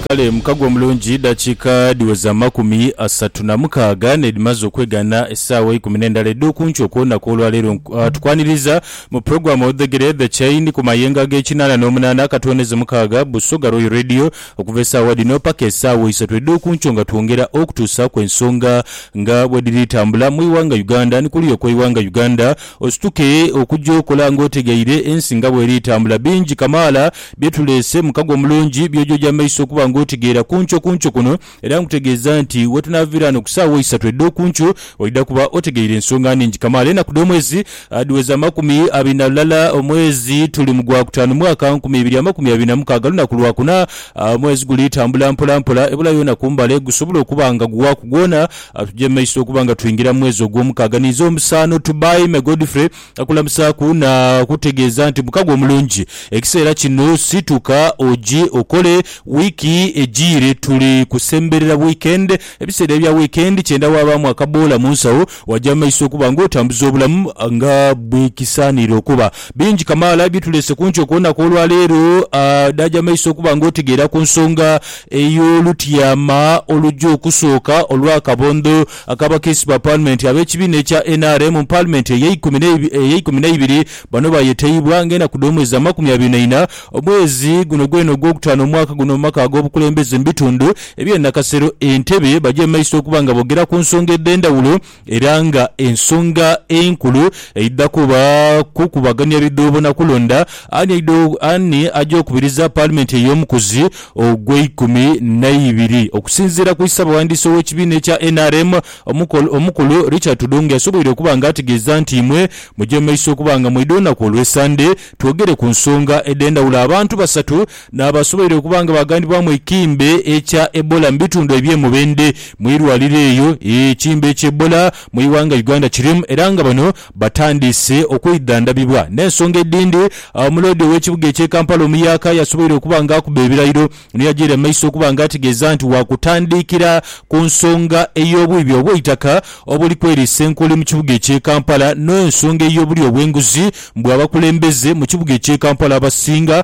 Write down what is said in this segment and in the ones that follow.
Kale mukago omulungi edhakiika dhiweza amakumi asatu na mukaaga n'edhimaze okwegaana essaawa eikumi n'endala edh'oku nkyo ku lunaku olwa leero. Tukwaniriza mu pulogulaamu Odhegere The Chain ku mayengo ag'ekinaana n'omunaana akatwoneze mukaaga, Busoga Royal Radio, okuva essaawa dhino paka essaawa isatu edh'oku nkyo nga twongera okutuusaaku ensonga nga bwedhiri tambula mu ighanga Uganda ni kuliya okw'eighanga Uganda. Osituke okugya okola nga otegeire ensi nga bweri etambula. Bingi kamaala bye tuleese, mukago omulungi, by'oja oja mu maiso okuba nga otegeera ku nkyo ku nkyo kuno. Era nkutegeeza nti wetunaaviira ghano ku saawa eisatu edh'okunkyo, oidha kuba otegeire ensonga nhingi kamaala. Enaku dh'omwezi dhiweza amakumi abiri na lulala, omwezi tuli mu gwa kutaanu, mwaka nkumi ibiri amakumi abiri na mukaaga, lunaku lwa kuna. Omwezi guli tambula mpola mpola, ebula yoona ku mbale, gusobola okuba nga gughaku gwona. Atugye maiso okuba nga twingira mu mwezi ogw'omukaaga ninze omusaano to buy me Godfrey akulamusaaku na kutegeeza nti mukago omulungi ekiseera kino situka oje okole wiiki ejiire tuli kusemberera weekend ebiseera ebya weekend kyenda wabaamu akaboola mu nsawo waja mu maiso okuba nga otambuza obulamu nga bwekisaanire okuba bingi kamaala ebituleese ku nkyo kwona kw'olwaleero ah naja mu maiso okuba nga otegeera ku nsonga Eyo olutyama olugya okusooka olw'akabondho ak'abakiisi ba Paalimenti ab'ekibiina ekya nrm mu Paalimenti ey'eikumi n'eibiri bano baayetaibwa ng'enaku dh'omwezi amakumi abiri na ina omwezi guno gwene ogw'okutaano omwaka guno mu maka ag'obukulembeze mu bitundu eby'e Nakasero e Ntebe bagye mu maiso okuba nga boogera ku nsonga edh'endhawulo era nga ensonga enkulu eidha kuba kukubagania bidhoobo na kulonda ani ani aja okubiriza Paalimenti ey'omukuzi ogweikumi naibiri. Okusinziira ku Isabaghandiisi ow'ekibiina ekya nrm, Omukulu Richard Tudong yasoboire okuba nga ategeeza nti imwe muje mu maiso okuba nga mweidha olunaku olw'esande twogere ku nsonga edhendhawulo abantu basatu N'abasubaire okuba nga baaghanibwamu ekimbe ekya Ebola mu bitundu eby'e Mubende mu irwaliro eyo ekimbe ekya Ebola mu ighanga Uganda kirimu era nga bano batandiise okwidhandhabibwa. N'ensonga edhindi, Omuloodi ow'ekibuga eky'e Kampala omuyaka yasubaire okuba nga akuba ebirayiro ni yajiira mu maiso okuba nga ategeeza nti waakutandikira ku nsonga ey'obwibi obw'eitaka obuli kweriisa enkuli mu kibuga eky'e Kampala n'ensonga ey'obulyo obw'enguzi mbu abakulembeze mu kibuga eky'e Kampala abasinga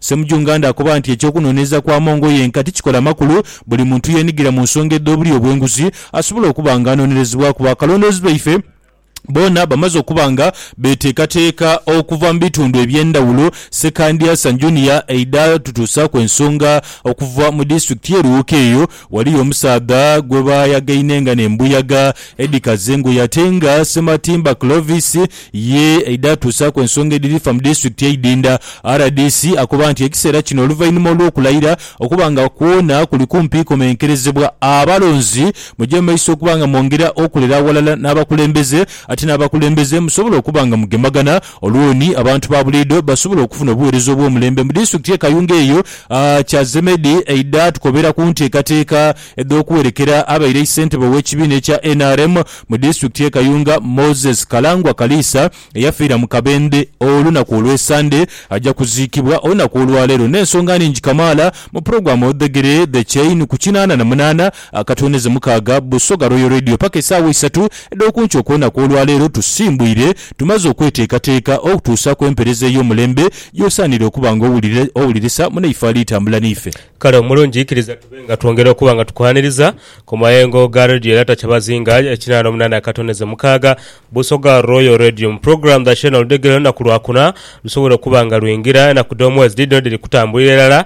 Ssemujunganda akoba nti eky'okunoonyereza kwa Mongo yenka tikikola makulu, buli muntu yeenhigira mu nsonga edh'obulyo obw'enguzi asobola okuba nga anonerezebwaku bakalondoozi baife boona bamaze okuba nga beteekateeka okuva mu bitundu eby'endhawulo Ssekandya San Junior eidha tutuusaaku ensonga okuva mu disitulikiti y'e Luwoko eyo Ghaliyo omusaadha gwe baayagainenga n'embuyaga edhikaze engoye ate nga Ssematimba Clovis ye aidha atuusaaku ensonga edhiri fa mu disitulikiti eidhindha. Rdc akoba nti ekiseera kino oluvainhuma olw'okulayira okuba nga kwona kuli kumpi komenkerezebwa, abalonzi muje mu maiso okuba nga mwongera okolera aghalala n'abakulembeze ate n'abakulembeze musobole okuba nga mugemagana Olwoni abantu ba buliidho basobola okufuna obuweereza obw'omulembe mu disitulikiti y'e Kayunga eyo, Cha Zemedi eidha tukobera ku nteekateeka edh'okuwerekera abaire ssentebe ow'ekibiina ekya nrm mu disitulikiti y'e Kayunga, Moses Kalangwa Kaliisa eyafiira mu Kabende olunaku olw'esande aja kuziikibwa olunaku olwaleero n'ensonga ningi kamaala mu pulogulaamu Odhegere The Chain ku kinaana na munaana Akatwene ze mukaaga, Busoga Royal Radio paka esaawa eisatu edh'okunkyo okw'enaku olwaleero tusimbwire tumaze okweteekateeka okutuusa ku empereza ey'omulembe gy'osaanire okuba nga owulira owulirisa munaife ali tambula n'ife. Kale omulungi ikiriza tube nga twongera okuba nga tukuhhaaniriza ku mayengo ga Radio era takyabazinga ekinaana omunaana akatwene ze mukaaga Busoga Royal Radio mu pulogulaamu dha Channel dhegere olunaku Lwakuna lusobole okuba nga lwingira enaku dh'omwezi dhidhino dhiri kutambulira irala.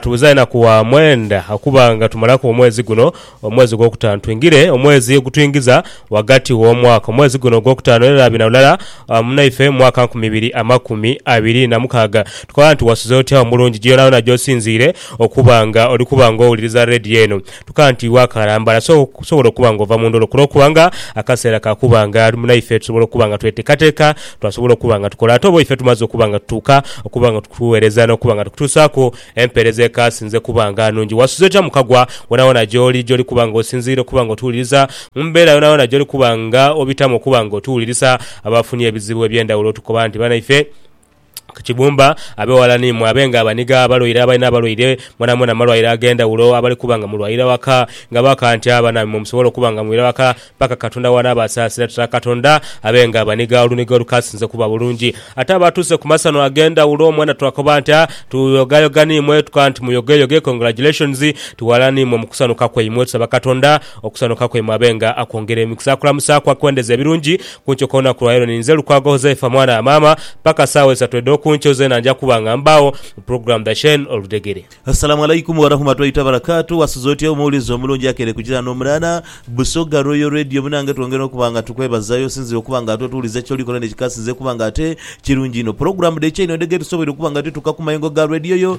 Tubuza enaku wa mwenda okuba nga tumalaku omwezi guno, omwezi ogwokutaanu twingire omwezi ogutwingiza ghagati w'omwaka. Omwezi guno ogwokutaanu era bina lulala munaife mu mwaka nkumi ibiri amakumi abiri na mukaaga. Tukoba nti wasuze otya omulungi gye yonayona gy'osinziire okuba nga oli kuba nga owuliriza Radio eno. Tuka nti iwe akalambala so kusobola okuba nga ova mu ndholo kulo kuba nga akaseera ka kuba nga naife tusobola okuba nga tweteekateeka twasobola okuba nga tukola. Ate oba ife tumaze okuba nga tutuuka okuba nga tukuweereza n'okuba nga tukutuusaaku empeereza ekaasinze kuba nga nungi. Wasuze otya mu kagwa? Woonawoona gy'oli, gy'oli kuba nga osinziira okuba nga otuwuliriza, mu mbeera yoonayoona gy'oli kuba nga obitamu okuba nga otuwulirisa, abaafunye ebizibu eby'endhawulo tukoba nti banaife, ku kibumba, ab'eghala ni mwe, abe nga abaniga, abalwaire, abalina abalwaire, mwenamwena mu malwaire ag'endhawulo, abali kuba nga mulwaira waka, nga bakaantya, banaamwe mwe musobole okuba nga mwira waka paka Katonda w'anaabasaasira. Tata Katonda abe nga abaniga oluniga olukaasinze okuba bulungi. Ate abatuuse ku masano ag'endhawulo, mwena twakoba nti, A, tuyogayoga ni mwe, tukoba nti, Muyogeyoge, Congratulations, tughalana ni mwe mu kusanuka kwaimwe. Tusaba Katonda Okusanuka kwaimwe abenga akwongere emikisa akulamusaaku akwendeze ebirungi kunkyo kolunaku lwaleero niinze Lukwago Huzaifa mwana wa maama paka saawa isatu edhokunkyo zeena nja kuba nga mbaagho mu program dha Shein Oludhegere. Assalamu Alaikum Warahumatuaita Barakatu Wasuze otya omuwulizi omulungi akeire ku jirani omulala Busoga Royal Radio munange twongera okuba nga tukwebazayo osinzire okuba nga ate otuwuliza kyolikola nekikasinze okuba nga ate kirungi inho Program dhe Chain Odhegere tusoboire okuba nga tutuuka ku mayengo ga Radio yo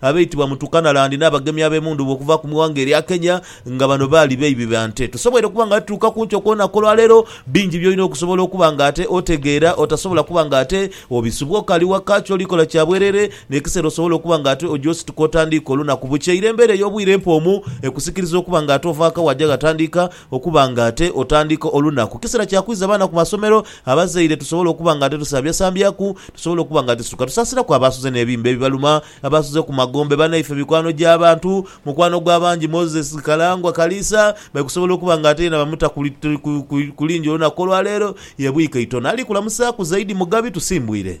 abeitibwa mu Turkanaland n'abagemi ab'emundhuba okuva ku ighanga erya Kenya nga bano baali beibi ba nte. Tosoboire kuba nga tutuuka ku nkyo ku lunaku olwaleero, bingi by'olina okusobola okuba nga ate otegeera otasobola kuba nga ate obisubwa okaali waka kyoli kola kya bwerere n'ekiseera osobola okuba nga ate oja osituka otandiika olunaku bukya. Ire embeera ey'obwire empomu ekusikiriza okuba nga ate ova ghaka waja ghatandiika Okuba nga ate otandiika olunaku kiseera kya kwiza baana ku masomero, abazaire tusobola okuba nga ate tusambyasambyaku, tusobola okuba nga ate tusuka tusaasiraku abaasuze n'ebimba ebibaluma, abaasuze ku magombe, banaife, mikwano gy'abantu. Mukwano gw'abangi Moses Kalangwa Kaliisa bali kusobola okuba nga ate yena bamuta ku lingi olunaku olwaleero. Yebwika itono. Ali kulamusaaku zaidi Mugabi Tusimbwire.